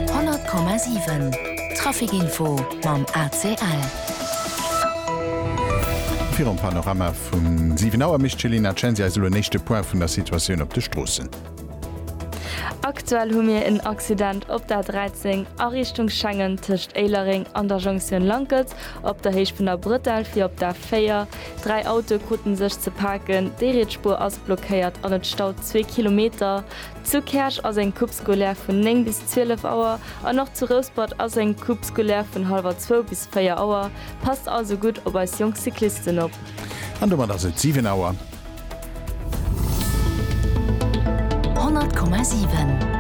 100,7 Traficinfo mam ACL. Virum Panorama vum 7 Auer mécht d'Céline Censi eis elo en éischte Point vun der Situatioun op de Stroossen. Aktuell hu mir en Accident op der 13 a Richtung Schengen tëscht Éilereng an der Jonktioun Lankels op der Héicht vun der Bretelle fir op der 4. Dräi Autoe krute sech ze paken, déi riets Spuer ass blockéiert an et staut zwee Kilometer. Zu Käerch ass eng Coupe scolaire vun 9 bis 12 Auer an och zu Rouspert ass eng Coupe scolaire vun hallwer zwou bis véier Auer. Passt also gutt op eis jonk Cyclisten op! An domat ass et 7 Auer. 100,7.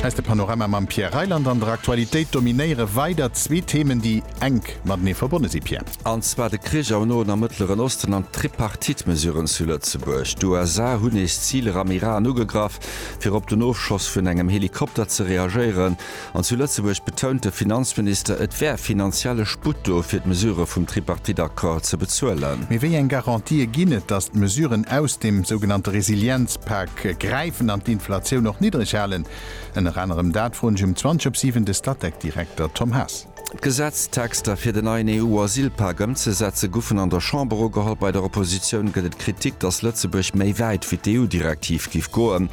Eis de Panorama mam Pierre Reyland an der Aktualitéit dominéiere weider zwee Themen, déi enk matenee verbonne si, Pierre. An zwar de Krich am Noen a Mëttleren Osten an d'Tripartite-Mesuren zu Lëtzebuerg. D'USA hunn nees Ziler am Iran ugegraff, fir op den Ofschoss vun engem Helikopter ze reagéieren. An zu Lëtzebuerg betount de Finanzminister, et wär finanzielle Sputt do, fir d'Mesurë vum Tripartite-Accord ze bezuelen. Mee wéi eng Garantië ginn et, datt d'Mesuren aus dem sougenannte Resilienzpak gräifen an d'Inflatioun och niddreg halen? Ënner anerem dat froen ech um 20 op 7 de Statec-Direkter Tom Haas. D'Gesetztexter fir den neien EU-Asylpak ëmzesetze goufen an der Chamber ugeholl. Bei der Oppositioun gëtt et Kritik, datt Lëtzebuerg méi wäit wéi d'EU-Direktiv giff goen.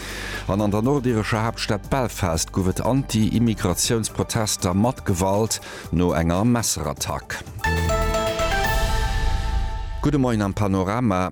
An an der nordirescher Haaptstad Belfast gouf et Anti-Immigratiouns-Protester mat Gewalt no enger Messerattack. Gudde Moien am Panorama.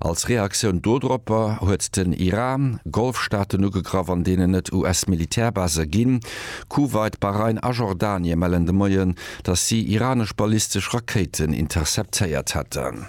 Als Reaktioun dodropper huet den Iran Golfstaaten ugegraff an deenen et US-Militärbase ginn. Kuwait, Bahrain a Jordanie mellen de Moien, datt si iranesch ballistesch Rakéiten interceptéiert hätten.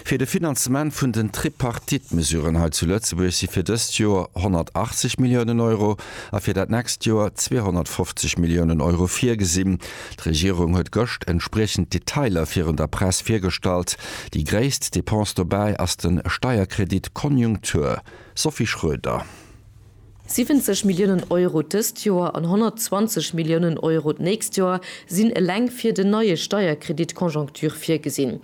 Fir de Finanzement vun den Tripartite-Mesuren hei zu Lëtzebuerg si fir dëst Joer 180 Milliounen Euro a fir dat nächst Joer 250 Milliounen Euro virgesinn. D'Regierung huet gëscht entspriechend Detailer virun der Press virgestallt. Déi gréisst Depense dobäi ass de Steierkredit Konjunktur. Sophie Schröder. 70 Milliounen Euro dëst Joer an 120 Milliounen Euro d'nächst Joer sinn eleng fir den neie Steierkredit Konjonktur virgesinn.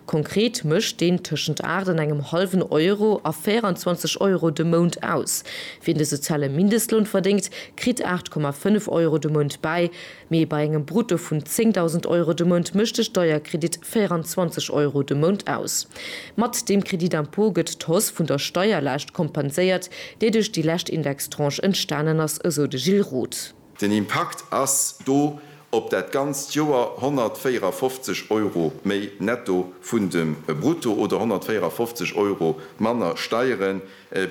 Konkret mécht deen tëschent 8 an engem hallwen Euro a 24 Euro de Mount aus. Wien de soziale Mindestloun verdéngt, kritt 8,5 Euro de Mount bäi. Mee bei engem Brutto vun 10.000 Euro de Mount mécht de Steierkredit 24 Euro de Mount aus. Mat deem Crédit d'impôt gëtt d'Hausse vun der Steierlaascht kompenséiert, déi duerch déi lescht Indextranche entstanen ass, esou de Gilles Roth. Den Impakt ass do op dat ganzt Joer 154 Euro méi netto vun dem Brutto oder 154 Euro manner Steiere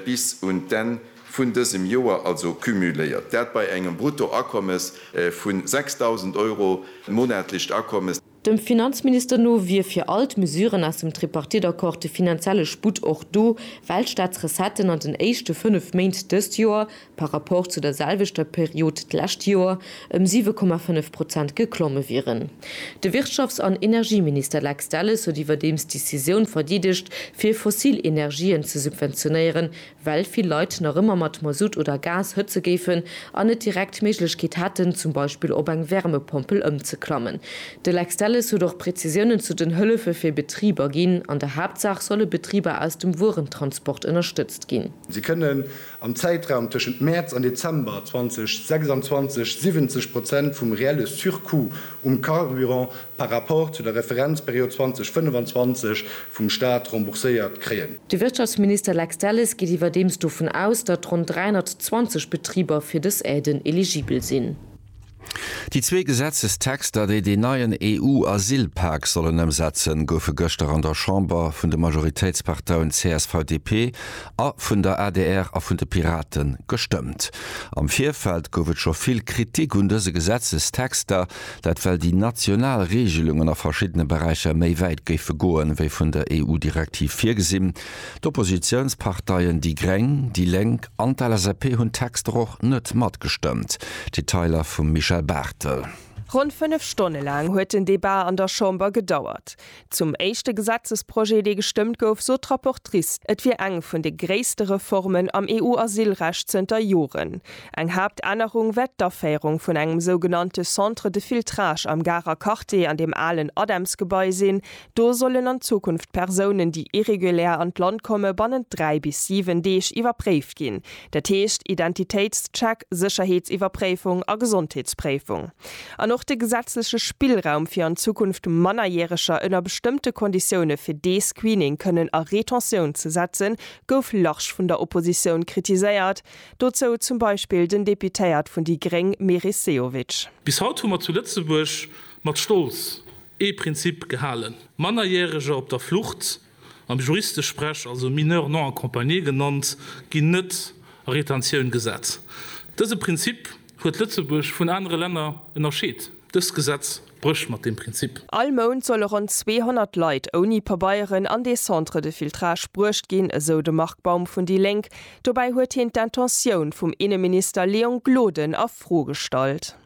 bis un d'Enn vun dësem Joer also cumuléiert, dat bei engem Bruttoakommes vu 6.000 Euro, monatlecht Akommes. Dem Finanzminister no wier fir all d'Mesuren aus dem Tripartite-Accord de finanzielle Sputt och do, well d'Staatsrecetten an den éischte fënnef Méint dëst Joer, par rapport zu der selwechter Period d'lescht Joer, ëm 7,5 Prozent geklomme wieren. De Wirtschafts an Energieminister Lex Delles huet iwwerdeems d'Decisioun verdeedegt, fir fossil Energien ze subventionéieren, well vill Leit nach ëmmer mat Masutt oder Gas hëtze géifen an net direkt d'Méiglechkeet hätten, zum Beispill op eng Wärmepompel ëmzeklammen. De Lex Delles huet och Prezisiounen zu den Hëllefe fir Betriber ginn. An der Haaptsaach solle Betriber aus dem Wuerentransport ënnerstëtzt ginn. Si kënnen am Zäitraum tëschent Mäerz an Dezember 2026 70 Prozent vum reelle Surcoût um Carburant par rapport zu der Referenzperiod 2025 vum Stat rembourséiert kréien. De Wirtschaftsminister Lex Delles geet iwwerdeems dovun aus, datt ronn 320 Betriber fir dës Aiden eligibel sinn. Déi zwee Gesetzestexter, déi deen neien EU-Asylpak sollen ëmsetzen, goufe gëschter an der Chamber vun de Majoritéitsparteien CSV-DP a vun der adr a vun de Pirate gestëmmt. Am Virfeld gouf et scho vill Kritik un dëse Gesetzestexter, Dat well déi national Reegelungen a verschiddene Beräicher méi wäit géife goen, wéi vun der EU-Direktiv virgesinn. D'Oppositiounsparteien déi gréng, déi lénk an d'LSAP hunn d'Texter och net matgestëmmt. Detailer vum Michel Barthel. Ronn fënnef Stonne laang huet den Debat an der Chamber gedauert. Zum éischte Gesetzesprojet, dee gestëmmt gouf, sot d'Rapportrice, et wier eng vun de gréisste Reformen am EU-Asylrecht zënter Joren. Eng Haaptännerung wär d'Aféierung vun engem sougenannte Centre de filtrage am Garer Quartier an deem alen ADEMS-Gebai sinn. Do sollen an Zukunft d'Persounen, déi irregulär an d'Land komme, bannent dräi bis siwen Deeg iwwerpréift ginn, dat heescht Identitéitscheck, Sécherheetsiwwerpréifung a Gesondheetspréifung. An och de gesetzleche Spillraum, fir an Zukunft Mannerjäreger ënner bestëmmte Konditioune fir dee Screening kënnen a Retentioun ze setzen, gouf large vun der Oppositioun kritiséiert, dozou zum Beispill den Deputéiert vun déi gréng Meris Sehovic. Bis haut hu mer zu Lëtzebuerg mat Stolz ee Prinzip gehalen, Mannerjäreger op der Flucht am Juristesprech also Mineurs non accompagnés genannt, ginn net a Retentioun gesat. Dëse Prinzip huet Lëtzebuerg vun anere Länner ënnerscheet. Dëst Gesetz brécht mat deem Prinzip. All Mount solle ronn 200 Leit ouni Pabeieren an dee Centre de filtrage bruecht ginn, esou de Marc Baum vun déi Lénk. Dobäi huet hien d'Intentioun vum Inneminister Léon Gloden a Fro gestallt.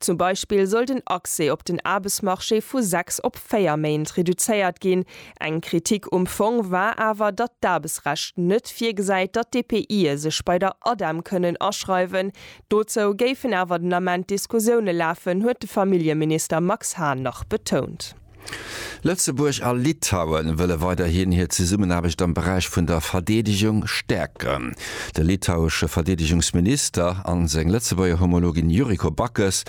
Zum Beispill soll den Accès op den Aarbechtsmarché vu sechs op véier Méint reduzéiert ginn. Eng Kritik um Fong war awer, datt d'Aarbechtsrecht net virgesäit, datt d'EPIe sech bei der ADEM kënnen aschreiwen. Dozou géifen awer den Ament Diskussioune lafen, huet de Familljeminister Max Hahn nach betount. Lëtzebuerg a Litauen wëlle weiderhin hir Zesummenaarbecht am Beräich vun der Verdeedegung stäerken. De litauesche Verdeedegungsminister an seng Lëtzebuerger Homologin Yuriko Backes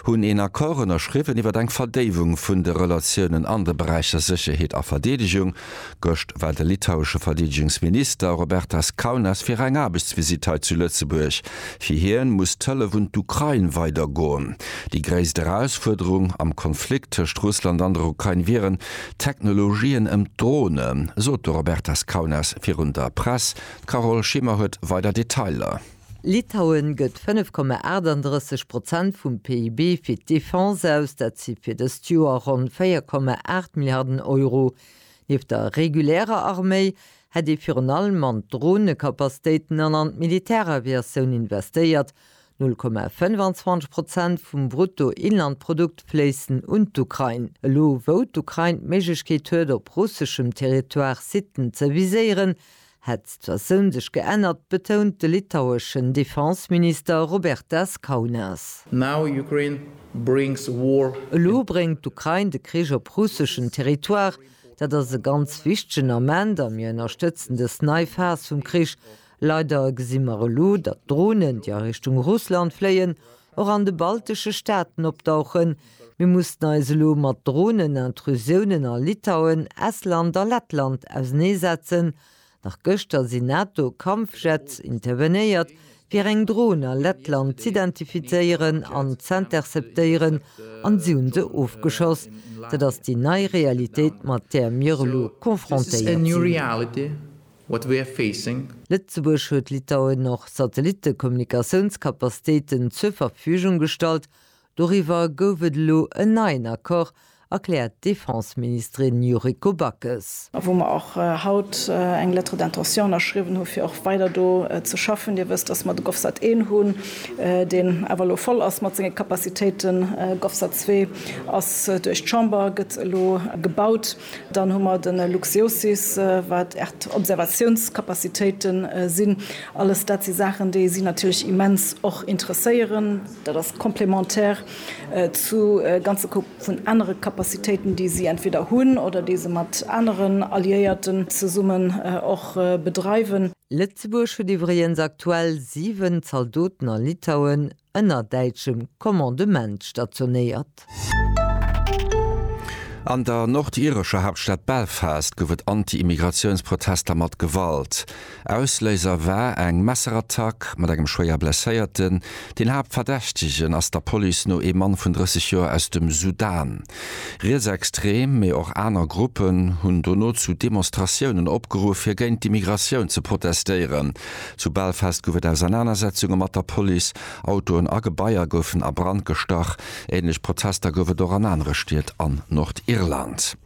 hunn een Accord ënnerschriwwen iwwer eng Verdéiwung vun de Relatiounen an de Beräicher Sécherheet a Verdeedegung, Gëscht war de litauesche Verdeedegungsminister Robertas Kaunas fir eng Aarbechtsvisitt hei zu Lëtzebuerg. Fir hien muss d'Hëllef un d'Ukrain weider goen. Déi gréisst Erausfuerderung am Konflikt tëscht Russland an der Ukrain wieren d'Technologien ëm d'Dronen, sot de Robertas Kaunas virun der Press. D'Carole Schimmer huet weider Detailer. Litauen gëtt 5,38 Prozent vum PIB fir d'Defense aus, dat si fir dëst Joer ronn 4,8 Milliarden Euro. Nieft der regulärer Arméi hätt ee virun allem an d'Dronekapastéiten an an d'Militäraviatioun investéiert, 0,25 Prozent vum Bruttoinlandprodukt fléissen un d'Ukrain. Elo wou d'Ukrain d'Méiglechkeet huet op russeschem Territoire Siten ze viséieren, Hätt d'Situatioun sech geännert, betount de litaueschen Defenseminister Robertas Kaunas. Now Ukraine brings war. Elo bréngt d'Ukrain de Krich op russeschen Territoire. Dat ass e ganz wichtegen Ament a mir ënnerstëtzen dës nei Phas vum Krich. Leider gesi mer elo, datt Dronen, déi a Richtung Russland fléien, och an de baltesche Staaten opdauchen. Mir mussen eis elo mat Dronen-Intrusiounen a Litauen, Estland a Lettland auseneesetzen. Nach gëschter sinn NATO-Kampfjets intervenéiert, fir eng Dron a Lettland z'identifizéieren an z'interceptéieren, an si hunn se ofgeschoss. Dat ass déi nei Realitéit, mat där mir elo confrontéiert sinn. What we're facing. Lëtzebuerg huet Litauen och Satellitte-Kommunikatiouns-Capacitéiten zur Verfügung gestallt. Doriwwer gouf et elo en neien Accord, erkläert d'Defense-Ministerin Yuriko Backes. A wou mer och haut eng Lettre d'intention ënnerschriwwen hu fir och weider do ze schaffen. Dir wësst, datt mer de GovSat 1 hunn, deen awer elo voll ass mat senge Capacitéiten. GovSat 2 ass duerch d'Chamber, gëtt elo gebaut. Dann hu mer de LuxGeoSys, wat Erdobservatiounskapazitéiten sinn. Alles dat si Saachen, déi si natierlech immens och interesséieren. Dat ass complémentaire zu ganze Koup vun anere Kapazitéiten, déi si entweder hunn oder déi se mat aneren Alliéierten zesummen och bedreiwen. Lëtzebuerg huet iwwregens aktuell 7 Zaldoten a Litauen. ënner däitschem Commandement stationéiert. An der nordirescher Haaptstad Belfast gouf et Anti-Immigratiouns-Protester mat Gewalt. Ausléiser war eng Messerattack mat engem schwéier Blesséierten. Den Haaptverdächtegen ass der Police no ee Mann vun 30 Joer aus dem Sudan. Rietsextrem, mee och aner Gruppen hunn dono zu Demonstratiounen opgeruff, fir géint d'Immigratioun ze protestéieren. Zu Belfast gouf et Ausernanersetzunge mat der Police, Autoen a Gebaier goufen a Brand gestach. Änlech Protester gouf et och an anere Stied an Nordirland.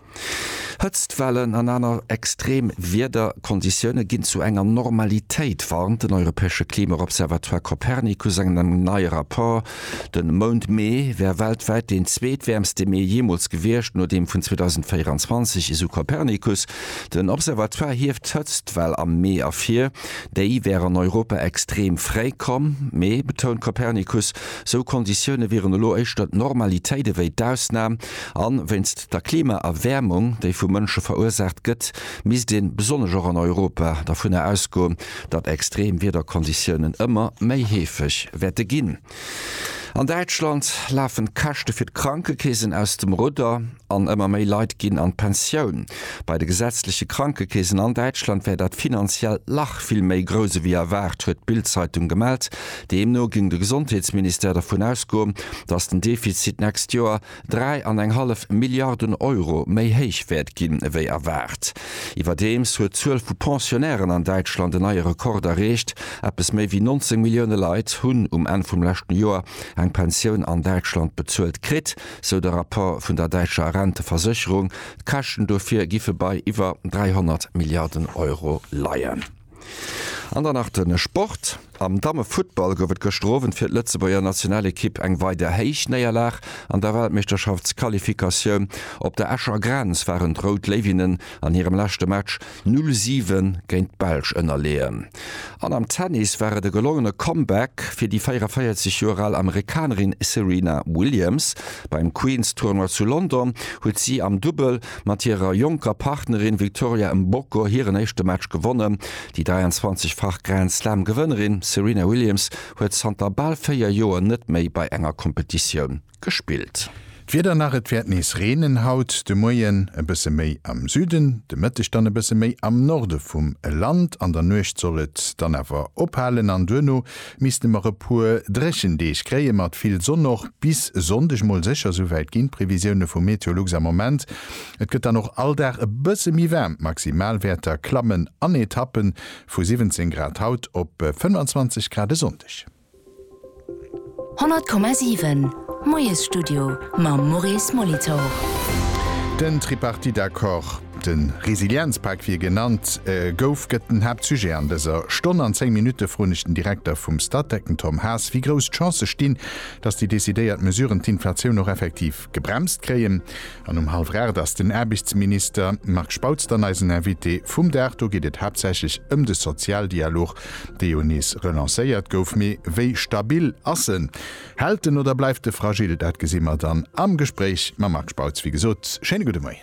Hëtztwellen an aner extrem Wiederkonditioune ginn zu enger Normalitéit, warnt den europäesche Klima-Observatoire Copernicus an engem neie Rapport. De Mount Mee wär weltwäit deen zweetwäermste Mee jeemools gewiescht, no deem vun 2024, esou Copernicus. Den Observatoire hieft d'Hëtztwell am Mee ervir. Déi wär an Europa extreem fréi komm. Mee, betount Copernicus, sou Konditioune wieren elo éischter d'Normalitéit ewéi d'Ausnam. A wéinst der Klimaerwäermung, déi vu Mënsche verursaacht gëtt, misst ee besonnesch och an Europa dervunner ausgoen, datt extrem Wiederkonditiounen ëmmer méi heefeg wäerte ginn. An Däitschland lafen d'Käschte fir d'Krankekeesen aus dem Rudder an ëmmer méi Leit ginn an d'Pensioun. Bei de gesetzleche Krankekeesen an Däitschland wär dat finanziellt Lach vill méi grouss ewéi erwaart, huet d'Bild-Zeitung gemellt. Deemno géing de Gesondheetsministère dervun ausgoen, datt den Defizit d'nächst Joer dräi an eng hallef Milliarden Euro méi héich wäert ginn ewéi erwaart. Iwwerdeems huet d'Zuel vu Pensionnairen an Däitschland en neie Rekord erreecht, eppes méi ewéi 19 Millioune Leit hunn um Enn vum leschten Joer eng Pensioun an Däitschland bezuelt kritt, sou de Rapport vun der däitscher Renteversécherung. D'Käschten dofir giffe bei iwwer 300 Milliarden Euro leien. An dann nach de Sport, Am Dammefuttball gouf et gëschter Owend fir d'Lëtzebuerger Nationalekipp eng weider héich Néierlag. An der Weltmeeschterschaftsqualifikatioun op der Escher Grenz waren d'Rout Léiwinnen an hirem leschte Match 'null siwen' géint d'Belsch ënnerleeën. An am Tennis war et e gelongene Comeback fir déi 44 Joer al Amerikanerin Serena Williams. Beim Queen's Tournoi zu London huet si am Dubbel mat hirer jonker Partnerin Victoria Mboko hiren éischte Match gewonnen. Déi 23-fach Grand-Slam-Gewënnerin Serena Williams huet zanter bal véier Joer net méi bei enger Kompetitioun gespillt. D'Wieder nach, Et wäert nees reenen haut de Moien, e bësse méi am Süden, de Mëtteg dann e bësse méi am Norde vum Land. An der Nuecht soll et dann awer ophalen an duerno Misste mer e puer Dréchendeeg kréie mat vill Sonn och bis Sonndeg mol sécher, souwäit ginn d'Previsioune vu Meteolux am Moment. Et gëtt dann och all Dag e bësse méi waarm, d'Maximalwäerter klammen an Etappen, vu 17 Grad haut op 25 Grad e Sonndeg. 100,7 Moiesstudio mam Maurice Molitor. Den Tripartite-Accord. De Resilienzpak, wéi e genannt gouf, gëtt den Haaptsujet an dëser Stonn. An 10 Minutte froen ech den Direkter vum Statec, den Tom Haas, wéi grouss d'Chancë stinn, datt déi decidéiert Mesuren d'Inflatioun och effektiv gebremst kréien. An um hallwer 8 ass den Aarbechtsminister Marc Spautz dann eisen Invité vum Dag. Do geet et haaptsächlech ëm de Sozialdialog, dee jo nees relancéiert gouf. Mee wéi stabil ass en? Hält en oder bleift e fragil? Dat gesi mer dann am Gespréich mam Marc Spautz. Wéi gesot, schéine gudde Moien.